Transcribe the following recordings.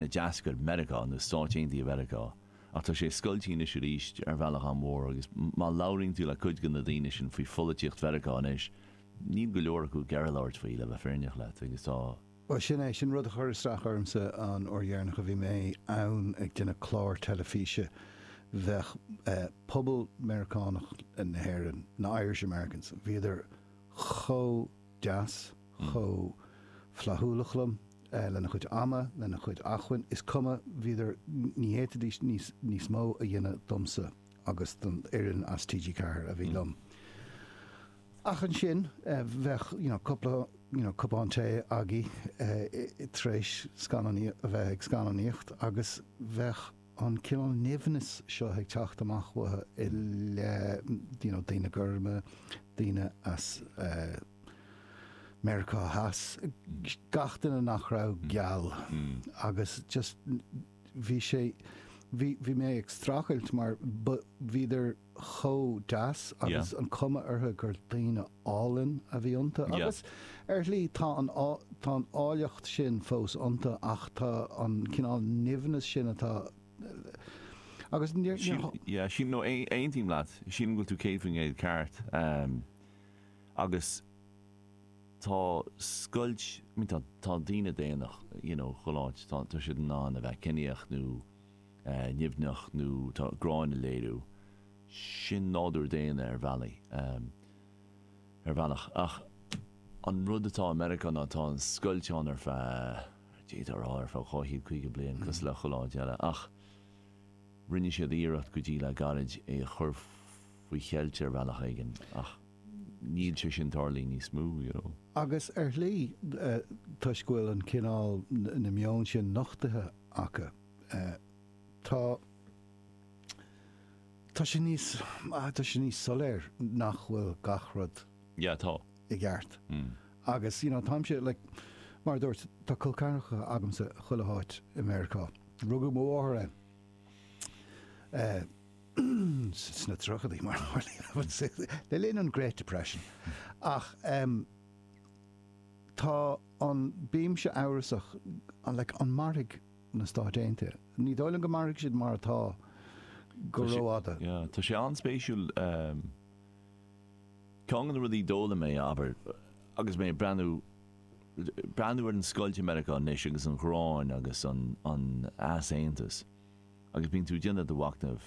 a d'eascair Meiriceá, nó Stáit Aontaithe Mheiriceá, ach tá sé scoilte anois arís ar bhealach an-mhór agus má labhraíonn tú le cuid de na daoine sin faoi pholaitíocht Mheiriceá anois, níl go leor acu ag iarraidh labhairt faoi, le bheith fírinneach leat, agus tá. Bhuel, sin é, sin rud a chuir isteach ormsa an uair dheireanach a bhí mé ann ag déanamh clár teilifíse, bheadh pobal Meiriceánach na hÉireann, na Irish Americans, bhíodar chomh. deas, chomh flaithiúlach liom lena chuid ama, lena chuid acmhainn, is cuma, bhíodar, ní fhéadfaidís níos mó a dhéanamh domsa agus don fhoireann as TG4 a bhí liom. Ach ansin bheadh you know cúpla you know cupán tae againn tar éis scannáin, a bheith ag scannánaíocht agus bheadh, an cineál nimhneas seo ag teacht amach uathu i leith you know daoine gorma, daoine as Meiriceá Theas, gach duine nach raibh geal agus just bhí sé, bhí mé ag streachailt mar bhíodar, chomh deas Yeah. agus an cuma ortha gur daoine álainn a bhí ionta Yeah. agus ar shlí tá an tá an áilleacht sin fós ionta ach tá an cineál nimhneas sin atá agus níor Sin, yeah, sin, no, aon, aontaím leat, sin go bhfuil tú céad faoin gcéad ceart. Um, agus tá scoilt, mi tá, tá daoine daonna, you know, chuile áit, tá, tá siad in ann a bheith ceníoch nó nimhneach nó tá gráin a léiriú. Sin nádúr daonna ar bhealaí, ar bhealach. Ach an rud atá i Meiriceá ná tá an scoilt ann ar feadh, d'fhéadfá a rá, ar feadh dhá chéad caoga bliain, cosúil le chuile áit eile. Ach rinne siad iarracht go dtí le gairid é a chur faoi cheilt ar bhealach éigin ach níl sé sin ag tarlú níos mó, you know. Agus ar shlí, toisc go bhfuil an cineál, na meon sin nochtaithe acu, Tá tá sé níos ah tá sé níos soiléir nach bhfuil gach rud Yeah, tá. i gceart. Agus, you know, táimse, like, mar a dúirt, tá col ceathracha agamsa chuile háit i Meiriceá. Rugadh mo mháthair ann eh, sna tríochaidí, mar a tharlaíonn sé, le linn an Great Depression. Ach em tá an bímse amhrasach, like, an mairfidh na Stáit Aontaithe. Ní dóigh liom go mairfidh siad mar atá go rófhada. Tá sé an-spéisiúil. Ceann de na rudaí d'fhoghlaim mé, abair, agus mé ag breathnú, breathnú ar an scoilt i Meiriceá anois agus an ghráin agus an easaontas agus bíonn tú ag déanamh do mhachnamh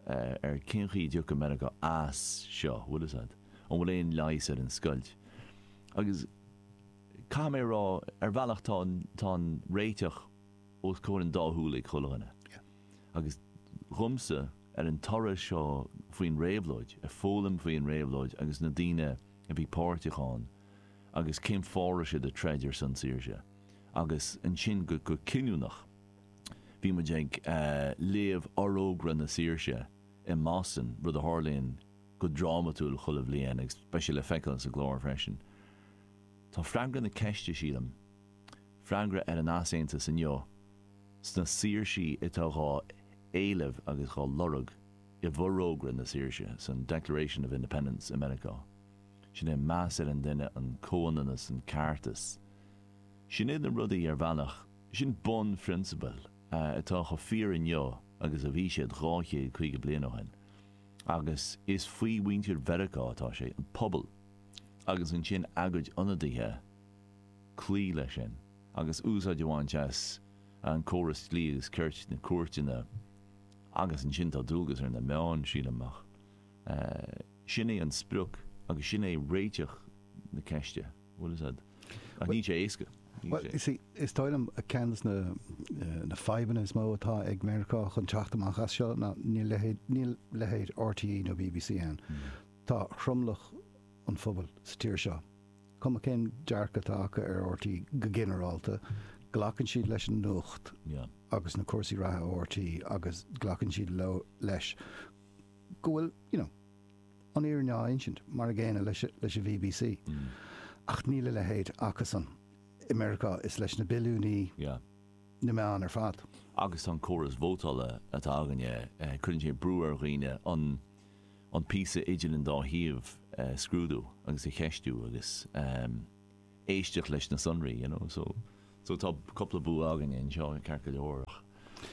ar cén chaoi a dtiocfaidh Meiriceá as seo, bhfuil a fhios a'd? An bhfuil aon leigheas ar an scoilt? Agus. caithfidh mé a rá, ar bhealach tá an, tá an réiteach os comhair an dá shúil ag chuile dhuine. Agus dhomsa, ar an toradh seo faoin réabhlóid, ag foghlaim faoi an réabhlóid agus na daoine a bhí páirteach ann agus cén fáth a raibh siad ag troid ar son saoirse. Agus ansin go, go cinniúnach, bhí muid ag léamh Forógra na Saoirse i mBoston, rud a tharlaíonn go drámatúil chuile bhliain agus beidh sé le feiceáil sa gclár freisin. Tá freagra na ceiste, sílim, freagra ar an easaontas inniu, sna saoirsí atá dhá éileamh agus dhá lorg i bhforógra na saoirse, san Declaration of Independence i Meiriceá. Sin é meas ar an duine, an comhionannas, an ceartas. Sin iad na rudaí, ar bhealach, sin bunphrionsabail atá chomh fíor inniu agus a bhí siad dhá chéad caoga bliain ó shin. Agus is faoi mhuintir Mheiriceá atá sé, an pobal, agus ansin ag a gcuid ionadaithe cloí leis sin agus úsáid a bhaint as an gcóras dlí agus cirt na cúirteanna agus ansin tá dualgas ar na meáin, sílim, ach sin é an sprioc agus sin é réiteach na ceiste, bhuel, is ea, ach níl sé éasca, níl sé. Is dóigh liom ceann de na fadhbanna is mó atá ag Meiriceá chun teacht amach as seo ná níl leithéid RTÉ nó BBC ann. Tá tromlach an phobail sa tír seo, cuma cén dearcadh atá acu ar RTÉ go ginearálta, glacann siad leis an nuacht agus na cúrsaí reatha ó RTÉ agus glacann siad leo leis go bhfuil you know an fhírinne á insint, mar an gcéanna leis an BBC. Ach níl a leithéid acusan i Meiriceá, is leis na billiúnaí na meáin ar fad. Agus an córas vótála atá againne, cuireann sé brú ar dhaoine an an píosa idir an dá thaobh a scrúdú agus a cheistiú agus éisteacht leis na sonraí, you know, so so tá cúpla bua againne anseo, ceart go leor ach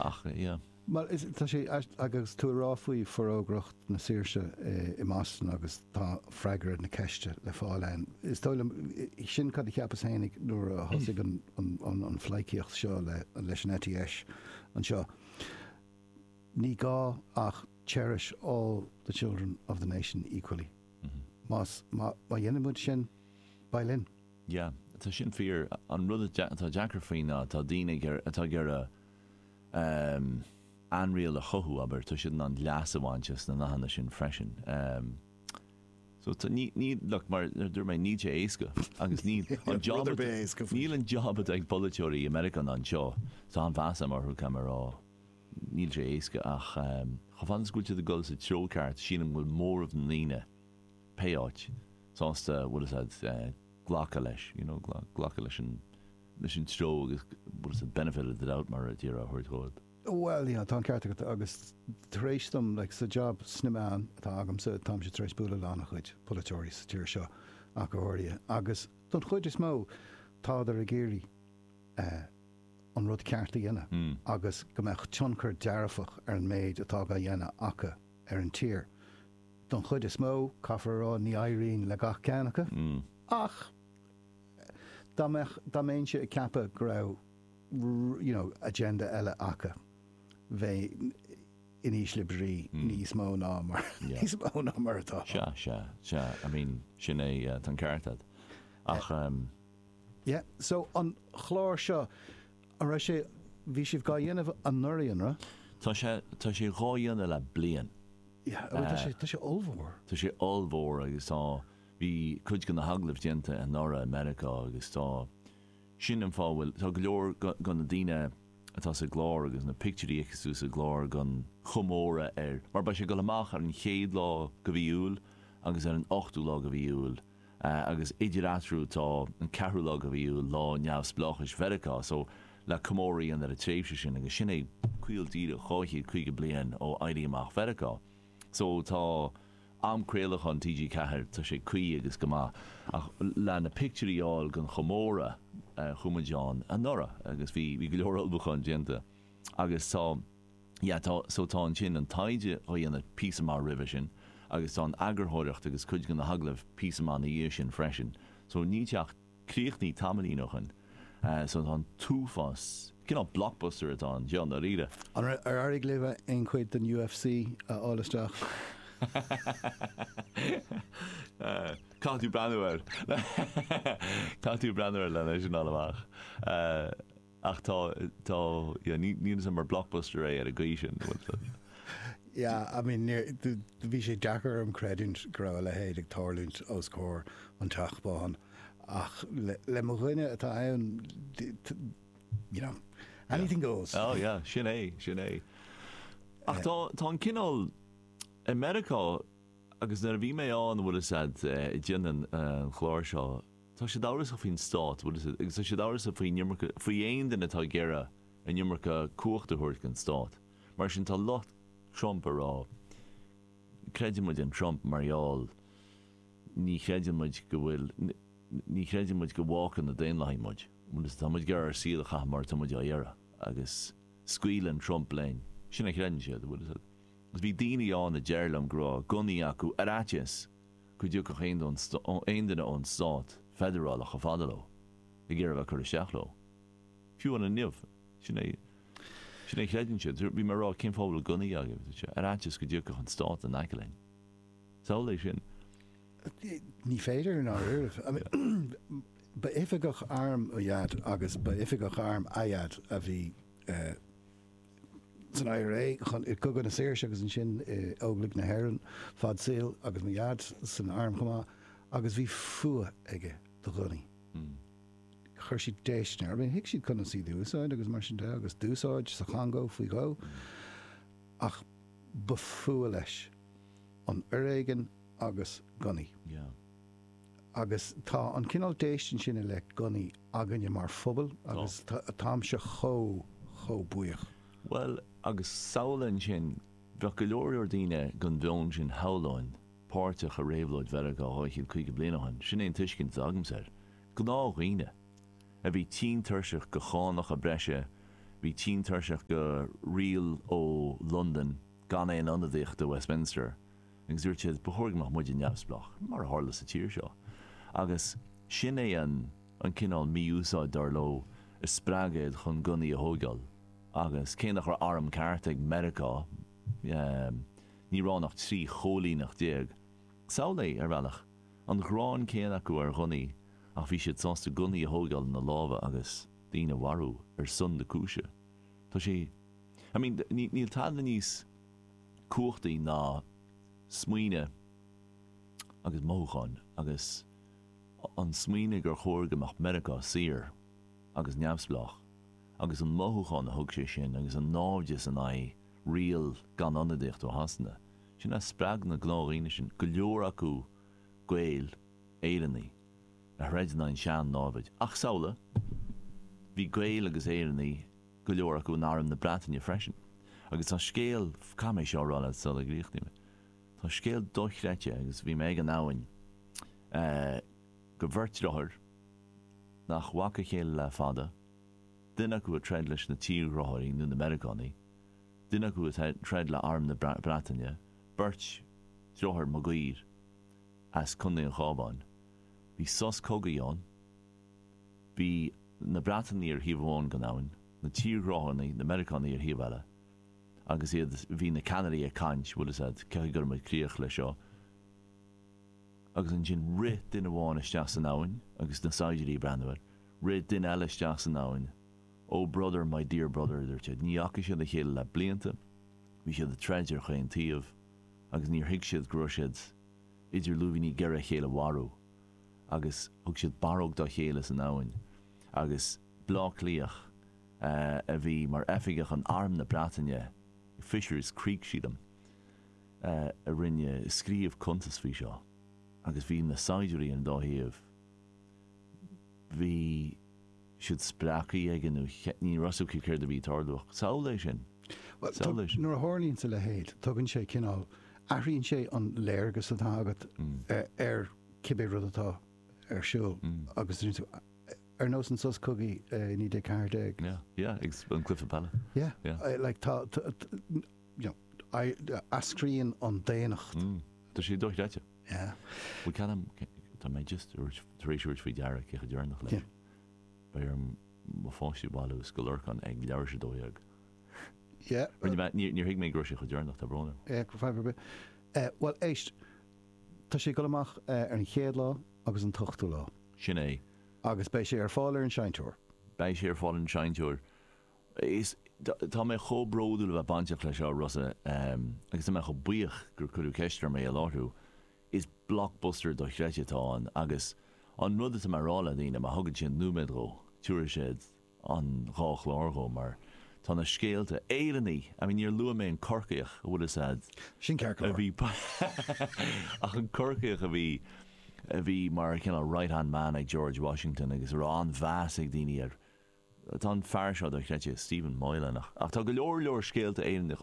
ach yeah. Bhuel is tá sé agus tú ag rá faoi Forógra na Saoirse i mBoston agus tá freagra na ceiste le fáil ann. Is dóigh liom sin cad a cheapas féin nuair a thosaigh an an an fhlaícíocht seo le leis an ETS anseo. Ní gá ach cherish all the children of the nation equally. Más, má, má dhéanann muid sin, beidh linn. Yeah, tá sin fíor. An rud atá deacair faoi ná tá daoine ag iarraidh, atá ag iarraidh ehm ainriail a chothú, abair, tá siad in ann leas a bhaint as na nathanna sin freisin. Ehm so tá, ní, ní, look, mar a dúirt mé, níl sé éasca agus ní, an job, níl an job atá ag polaiteoirí i Meiriceá ná anseo, tá an-mheas a'm orthu, caithfidh mé a rá. Níl sé éasca ach chomh fada is go bhfuil tú ag dul sa treo ceart sílim go bhfuil móramh mór na ndaoine, pé áit, sásta bhfuil fhios a'd glacadh leis, you know, glacadh leis an, leis an treo agus bhfuil fhios a'd benefit of the doubt mar a déarfá a thabhairt dhóibh. Bhuel, yeah, tá an ceart agat agus tar éis dom, like, sa job sna meáin atá agamsa táimse tar éis bualadh le an- a chuid polaiteoirí sa tír seo ach go háirithe agus don chuid is mó tádar ag iarraidh eh, an rud ceart a dhéanamh agus go mbeadh tionchar dearfach ar an méid atá dhá dhéanamh acu ar an tír. Don chuid is mó, caithfear a rá, ní éiríonn le gach ceann acu ach dá mbeadh, dá mbeinnse ag ceapadh go raibh you know agenda eile acu, bheinn in ísle brí níos mó ná mar, níos mó ná mar atá. Sea, sea, sea, I mean, sin é, tá an ceart agat. Ach. Yeah, so an chlár seo, an raibh sé, bhí sibh gá dhéanamh anuraidh, an raibh? Tá sé, tá sé dhá dhéanamh le bliain. Yeah, tá eh, sé, tá sé ollmhór. Tá sé ollmhór agus tá, bhí cuid de na hagallaimh déanta anuraidh i Meiriceá agus tá, sin an fáth a bhfuil, tá go leor de na daoine atá sa gclár agus na pictiúirí a fheiceann tú sa gclár den chomóradh ar, mar beidh sé ag dul amach ar an chéad lá de mhí Iúil agus ar an ochtú lá de mhí Iúil. agus idir eatarthu tá an ceathrú lá de mhí Iúil, lá neamhspleáchais Mheiriceá so le comóradh ar an tréimhse sin agus sin é caol díreach 250 bliain ó Éirí Amach Mheiriceá so tá am craolacháin TG Ceathair tá sé cuí agus go maith ach le na pictiúirí a fháil den chomóradh chuaigh muid ann anuraidh agus bhí bhí go leor ullmhúcháin déanta agus tá. Yeah tá, so tá ansin an taighde dhá dhéanamh píosa maith roimhe sin agus tá an eagarthóireacht agus cuid de na hagallaimh píosa maith na dhiaidh sin freisin. So níl sé ach críochnaithe tamaillín ó shoin. So tá an t-uafás, cineál blockbuster atá ann, seo, ndáiríre. An raibh, ar éirigh libh aon chuid den UFC a fháil isteach? Caithfidh tú breathnú air. Caithfidh tú breathnú air len é sin a fháil amach. Ach tá, tá, yeah, ní, níl a fhios agam ar blockbuster é ar an gcaoi sin, bhfuil tú? Yeah, I mean, níor, do, do, bhí sé deacair orm creidiúint go raibh a leithéid ag tarlúint os comhair an Teach Bán, ach le, le mo dhuine atá ann, do, do, you know, anything goes. Oh, yeah, sin é, sin é. Ach tá, tá an cineál, i Meiriceá, agus nuair a bhí mé ann, bhfuil fhios a'd, eh, déanann, eh, an chlár seo, Tá siad amhrasach faoin stát, bhuel, is é, agus tá siad amhrasach faoin iomarca, faoi aon duine atá ag iarraidh an iomarca cumhachta a thabhairt don stát. Mar sin, tá lucht Trump ag rá, creideann muid i Trump mar gheall, ní chreideann muid go bhfuil, ní chreideann muid go bhfágfaidh na Daonlathaigh muid, bhuel, is tá muid ag iarraidh ár saol a chaitheamh mar atá muid á iarraidh agus scaoileann Trump linn. Sin a chreideann siad, bhuel, is bhí daoine ann a déarfadh liom go raibh gunnaí acu ar fhaitíos go dtiocfadh aon duine ón stát feidearálach chomh fada leo ag iarraidh a bheith ag cur isteach leo. Fiú inniu, sin é a chreideann siad. Bhí mé ag rá, cén fáth a bhfuil gunnaí agaibh? Ar fhaitíos go dtiocfadh an stát in aice linn? Samhlaigh é sin. Ní féidir in Éirinn. Ba oifigeach airm mo Dhaid agus ba oifigeach airm a Dhaid a bhí san IRA i gCogadh na Saoirse agus ansin i Óglaigh na hÉireann fad saoil agus mo Dhaid san arm chomh maith agus bhí fuath aige do ghunnaí. Chuir siad déistin air. I mean thuig siad conas iad a úsáid agus mar sin de agus d'úsáid sa Chongó faoi dhó ach ba fuath leis an foréigean agus gunnaí. Yeah. agus tá an cineál déistin sin i leith gunnaí againne mar phobal agus táimse chomh, chomh buíoch. Bhuel, agus samhlaigh ansin, bheadh go leor, leor daoine den mheon sin, shamhlóinn, páirteach i réabhlóid Mheiriceá 250 bliain ó shin, sin é an tuiscint atá agamsa air. Gnáthdhaoine, a bhí tinn tuirseach de chánacha breise, bhí tinn tuirseach de riail ó Londain gan aon ionadaíocht i Westminster, agus dúirt siad, ba chóir go mbeadh muide neamhspleách, mar a tharla sa tír seo. Agus sin é an cineál mí-úsáid, dar leo, a spreag iad chun gunnaí a thóigeáil. Agus cé nach raibh arm ceart ag Meiriceá, ní raibh ann ach trí chóilíneacht déag. Samhlaigh, ar bhealach, an ghráin chéanna acu ar ghunnaí, ach bhí siad sásta gunnaí a thóigeáil ina lámha agus daoine a mharú ar son na cúise. Tá sé, I mean, níl tada níos. cumhachtaí ná smaoineamh agus mothúcháin agus an smaoineamh gur chóir go mbeadh Meiriceá saor agus neamhspleách agus an mothúchán a thug sé sin agus an náimhdeas in aghaidh riail gan ionadaíocht ó Shasana, sin a spreag na gnáthdhaoine sin, go leor acu Gaeil, Éireannaigh, a throid in aghaidh an tsean-námhad. Ach samhlaigh, bhí Gaeil agus Éireannaigh go leor acu in arm na Breataine freisin agus tá scéal, caithfidh mé seo a rá leat sula gcríochnaím é, tá scéal dochreidte agus bhí mé ag an abhainn de bheirt dreatháir nach bhfaca a chéile le fada, duine acu ag troid leis na tírghráthóirí nó na Meiriceánaigh, duine acu ag troid le arm na Breataine, beirt deartháir Maguire as Contae an Chábháin. Bhí sos cogaidh ann. Bhí na Breatanaigh ar thaobh amháin den abhainn, na tírghráthóirí, na Meiriceánaigh, ar thaobh eile. Agus iad, bhí na ceannairí ag caint, bhuel, is ea, caithfidh go gcuirfidh muid críoch leis seo. Agus ansin rith duine amháin isteach san abhainn agus na saighdiúirí ag breathnú air. Rith duine eile isteach san abhainn. Oh brother, my dear brother, a dúirt siad. Ní fhaca siad a chéile le blianta, bhí siad ag troid ar chaon taobh agus níor thuig siad go raibh siad idir lúibíní ag iarraidh a chéile a mharú. agus thug siad barróg dá chéile san abhainn agus Bleá Cliathach a bhí mar oifigeach in Arm na Breataine i Fishers Creek sílim a rinne scríobh cuntas faoi seo agus bhí na saighdiúirí an dá thaobh bhí siad spréachta aige nó ní raibh 's acu céard a bhí ag tarlú ach samhlaigh é sin, Bhuel, samhlaigh é sin. nuair a tharlaíonns a leithéid tugann sé cineál, athraíonn sé an léargas atá agat ar cibé rud atá ar siúl agus rinne tú, ar nós an sos cogaidh i 1914. Yeah, yeah, ag an cluiche peile. Yeah, Yeah. eh, like tá, tá, tá, you know, eascraíonn an daonnacht. Tá sé dochreidte. Tá mé just tar éis tabhairt faoi deara cé chomh deireanach leis. Beidh orm mo pháistí a bhailiú i Scoil Lorcáin ag leathuair tar éis 12. Níor thuig mé go raibh sé chomh deireanach, tá brón orm. Bhuel éist, tá sé ag dul amach ar an chéad lá agus an t-ochtú lá. Sin é. Agus beidh sé ar fáil ar an seinnteoir. Beidh sé ar fáil ar an seinnteoir. Is tá mé chomh bródúil a bheith bainteach leis seo, Rossa, agus tá mé chomh buíoch gur cuireadh ceist orm é a láithriú. Is blockbuster dochreidte atá ann agus an rud atá mé a rá le daoine, má thugann siad nóiméad dhó, tiúrfaidh siad an dhá chlár dhó mar tá na scéalta, Éireannaigh! I mean níor luaigh mé an Corcaíoch a bhfuil fhios a'd Sin a ceartlár. bhí ach an Corcaíoch a bhí, a bhí mar cineál right hand man ag George Washington agus a raibh an-mheas ag daoine air. Tá an fear seo dochreidte, Stephen Moylan, ach tá go leor leor scéalta Éireannach,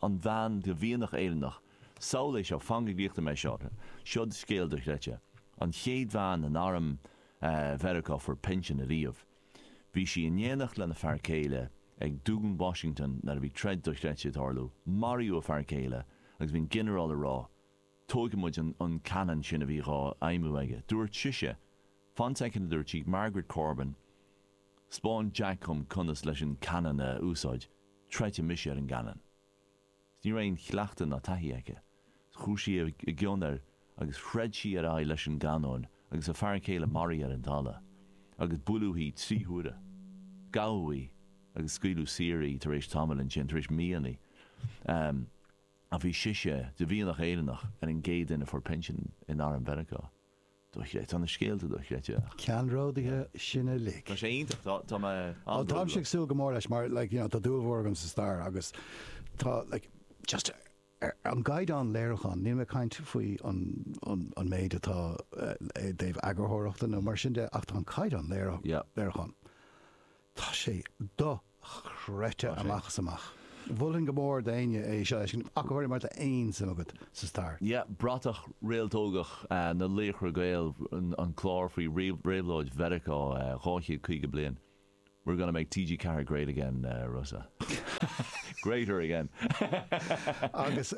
an bhean de mhianach Éireannach, samhlaigh é seo, fan go gcríochnaigh mé seo, seod scéal dochreidte, an chéad bhean in arm Mheiriceá a fuair pinsean ariamh, bhí sí in éineacht lena fear céile ag Dún Washington nuair a bhí troid dochreidte ag tarlú, maraíodh a fear céile agus bhí an ginearál ag rá, tóigfidh muid an cannon sin a bhí dhá fheidhmiú aige. Dúirt sise, Fan soicind a dúirt sí, Margaret Corbin, 'spáin Jack dhom conas leis an cannon a úsáid, troidfidh mise ar an gcannon. 'S ní raibh aon chleachtadh ná taithí aici. 'S chuaigh sí i gcionn air agus throid sí ar aghaidh leis an gcannon agus a fear céile maraí ar an dtalamh, agus buaileadh í trí huaire. Gabhadh í agus scaoileadh saor í tar éis tamaill ansin, tar éis míonnaí. a bhí sise de mhianach Éireannach ar an gcéad duine a fuair pinsean in arm Mheiriceá. Dochreidte. Tá na scéalta dochreidte ach. ceannródaithe sin uilig. Tá sé iontach. Tá tá mé Á, táimse an-bhródúil. ag súil go mór leis mar like, you know, tá dúil mhór agam sa stair agus tá like, just ar an gcaighdeán léiriúcháin, níl mé ag caint faoi an an an méid atá eh, i dtaobh eagarthóireachta nó mar sin de ach tá an caighdeán léire- Yeah. léiriúcháin Tá sé do-chreidte amach is amach. Mholfainn go mór d'éinne é seo a fheiscint ach go háirithe má tá aon suim agat sa stair. Yeah, bratach réaltógach na Laochra Gael, an clár faoi réabhlóid Mheiriceá 250 bliain. We're gonna make TG4 great again, Rossa. Greater again. Agus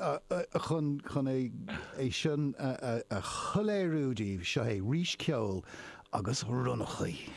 chun é sin a shoiléiriú daoibh, seo é, Rís Ceoil agus Ronnachaí.